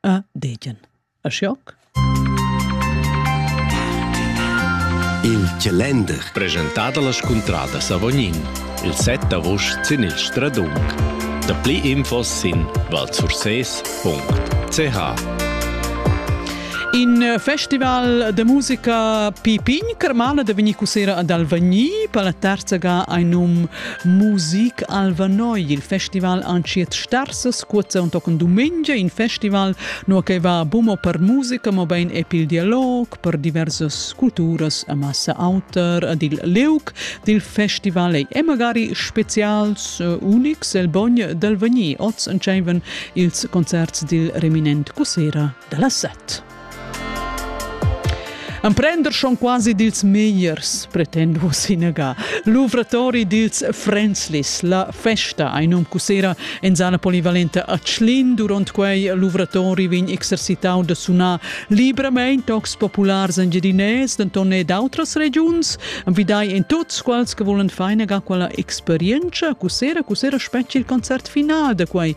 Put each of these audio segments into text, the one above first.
a degen. A schoc? Il calender presentà da la scuntrada Savognin, il 7 august sin il Stradung. Da pli infos sin valsurses.ch. In eh, festival de musica Pipin, Cremala de venir cusera ad Alvagni, per la terza ga ein num Musik Alva Noi, il festival antschiet starsas cuozza un tochen dumengia in festival, no che va bumo per musica, mo bein e pil dialog, per diversas culturas a massa auter ad il leuc dil festival e magari specials uh, unics el bogn del vegni oz entscheiven ils concerts dil reminent cussera dalla set. Emprender schon quasi dils megliers, pretend vos inaga. Luvratori dils Frenzlis, la festa ein um cussera en zana polivalenta a Tschlin. Duront quei luvratori vegn exercitau da sunar libramein tocs populars engiadinès, denton e d'autras regiuns. Envidai en tuts quals che volen far inaga quella experienza. Cussera, cussera spetgi il concert final da quei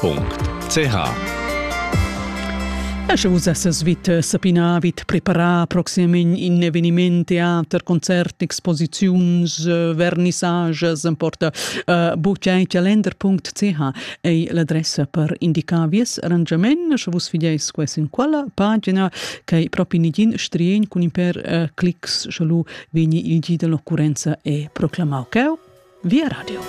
.ch Esche vus essas vit sapina vit preparar proximament in eveniment teater concert exposiziuns vernissages importa uh, buchai calender.ch ei l'adressa per indicar vies arrangament sche vus fideis ques in quella pagina che propi nigin strien cun in per uh, clics sche lu vegni il gi dell'occurrenza e proclamau cheu via radio